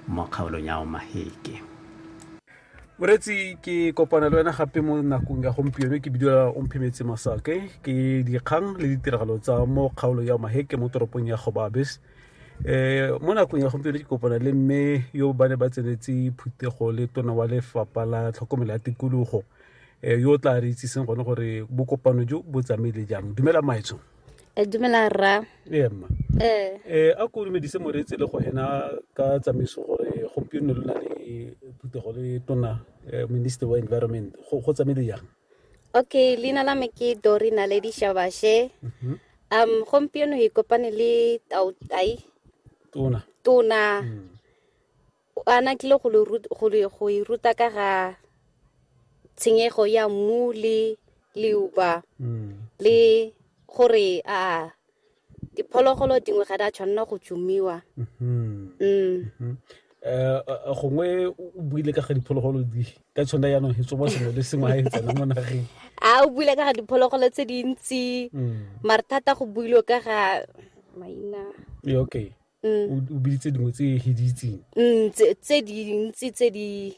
mo kgaolong ya omaheke moretsi ke kopana le wena gape mo nakong ya gompieno ke bidiwa omphemetse masake ke dikgang le ditiragalo tsa mo kgaolo ya maheke mo toropong ya gobabes um eh, mo nakong ya gompieno ke kopana le mme yo ba ne ba tsenetse phuthego le tona wa lefapha la tlhokomelo ya tikologo um yo o tla re itsiseng gone gore bokopano jo bo tsamaile jang dumela maetsong Eh, dumela rra ee mma ee eh, a ko dumedise moreetse le go ena ka tsamaiso gore gompieno lo na le phuthego le tona eh, minister wa environment go go tsamaile jang okay leina la me ke dori naledi shabashe Mhm. um gompieno e kopane le tautai tona tona Mm. a na tlile go e ruta ka ga tshenyego ya mmu le leuba mm. le gore a diphologolo dingwe ga di a tshwanela go tsumiwa mm-hmm. mm. mm-hmm. Eh, eh, gongwe o buile ka ga diphologolo di ka tshwana yaanong e tsoba sengwe le sengwe ga e tsena mo nageng a o buile ka ga diphologolo tse dintsi mm. mare thata go builwe ka ga maina okay mm. o biditse dingwe tse e hiditseng mm, tse dintsi tse di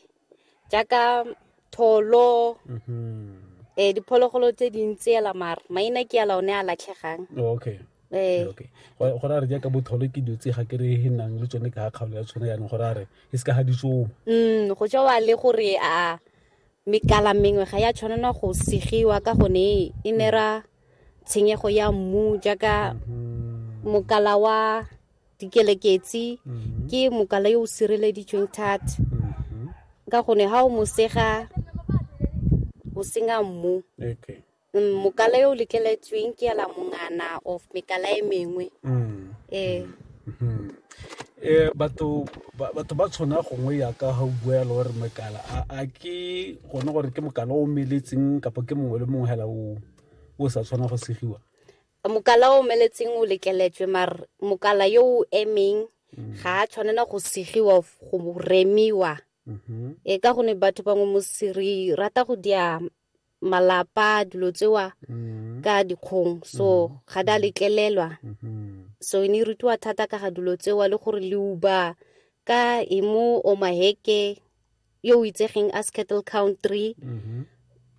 jaaka tholo um mm-hmm. eh, diphologolo tse dintsi ela mara maina ke ala one a latlhegang oh, okay Eh. okay go ra re jaaka botholo ke dilo tse ga ke re e nang le tsone ka ga kgaolo ya tshone yanong go ra re e se ka ga ditsomo mm go jewa le gore a mekala mengwe ga ya tshwanelwa go segiwa ka gone e nera tshenyego ya mmu jaaka mokala wa dikeleketsi ke mokala yo o sireleditsweng thata ka gone ga o mosega o senya mmu okay Mm, mokala yo o letleletsweng ke ela mongana of mekala e mengwe mm. ee Batho ba tshwana gongwe yaka ga o bua yalo gore mokala a ke gone gore ke mokala o omeletseng kapa ke mongwe le mongwe hela o sa tshwana go segiwa? Mokala o omeletseng o lekeletswe mar mokala yo o emeng ga a tshwanela go segiwa go remiwa e ka gone batho bangwe re rata go dia malapa dilo tsewa mm-hmm. ka dikgong so mm-hmm. ga da letlelelwa mm-hmm. so e ne e rutiwa thata ka ga dilo tsewa le gore leuba ka emo o maheke yo o itsegeng as cattle country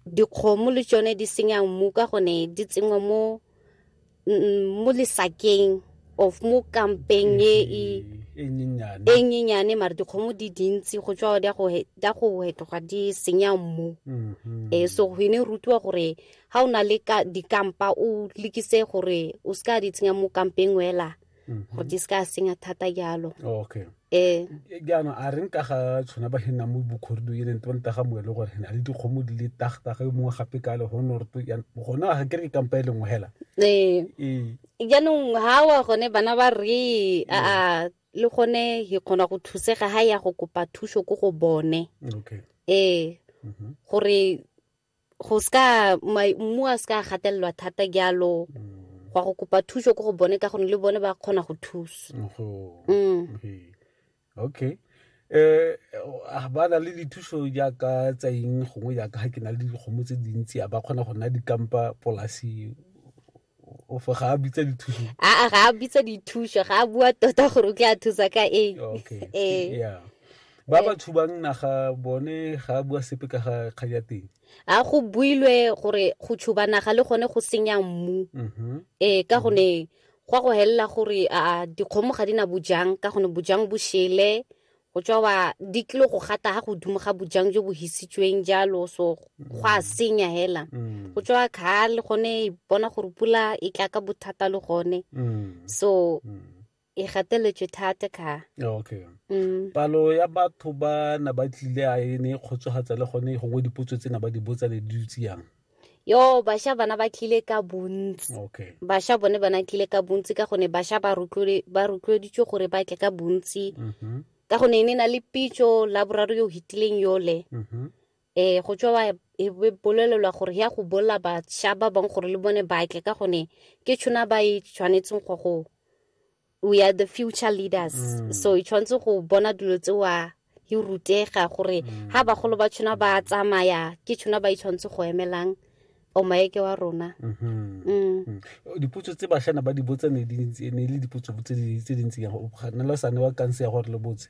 dikgomo le tsone di senyang mmu ka gone di tsenngwa mo mo lesakeng of mo kampeng e e e nyenyane e nyenyane mare dikgomo di dintsi go tswa di a go he- di a go hetoga di senya mmu Mhm. eh so go ne rutiwa gore ha o na le ka dikampa o lekise gore o se ka di tsenya mo kampeng wela Mhm. gore di se ka senya thata jalo oh, okay ee eh. jaanong a reng ka ga tshwana ba hena mo bokhorido e leng tebane taga moe le gore na le dikgomo di le tagtaga e mongwe gape ka le gone gore to gone ga kere ke kampa e leng hela ee jaanong eh. eh. ha wa gone bana ba re a le gone he kgona go thusega ha ya go kopa thuso ko go bone okay ee mhm. gore go ska mmu a ska gatelelwa thata jalo mm. go go kopa thuso ko go bone ka gone le bone ba kgona go thusa mm. okay eh ba na le dithuso jaaka tsa eng gongwe jaaka ga ke na le dikgomo tse dintsi a ba kgona go nna dikampa polasi ofa ga a bitsa dithuso aa ga a bitsa dithuso ga a bua tota gore o tla thusa ka eng ee ba ba thubang naga bone ga a bua sepe ka ga kgang ya teng a go builwe gore go tshuba naga le gone go senya mmu mm-hmm. ee ka gone go a go helela gore a dikgomo ga di na bojang ka gone bojang bo shele go tswa wa di tlile go gata ga godimo ga bojang jo bo hisitsweng jalo so go a senya hela Mm. go tswa kha le gone e bona gore pula e tla ka bothata le gone Mm. so Mm. e gateletswe thata kha okay mm. palo ya batho ba na ba tlile a e ne e kgotsogatsa le gone gongwe dipotso tse na ba di botsa ne di dutse yang yo basha bana ba tlile ka bontsi okay. basha bone bana tlile ka bontsi ka gone basha ba rotloeditswe gore ba tle ka bontsi mm -hmm. ka gone e ne na le pitso la boraro yo hitileng yole mm -hmm. eh go tswa e bolelelwa gore ya go bolla basha ba bang gore le bone ba tle ka gone ke tshona ba e tshwanetseng go go we are the future leaders mm. so e tshwanetse go bona dilo tse wa e rutega gore mm. ha bagolo ba tshwana ba tsamaya ke tshwana ba itshwanetse go emelang o maeke wa rona mm-hmm. mm. mm. dipotso tse bashana ba di botsa ne le dipotso tse dintsi yang na la sane wa kanse ya gore le botse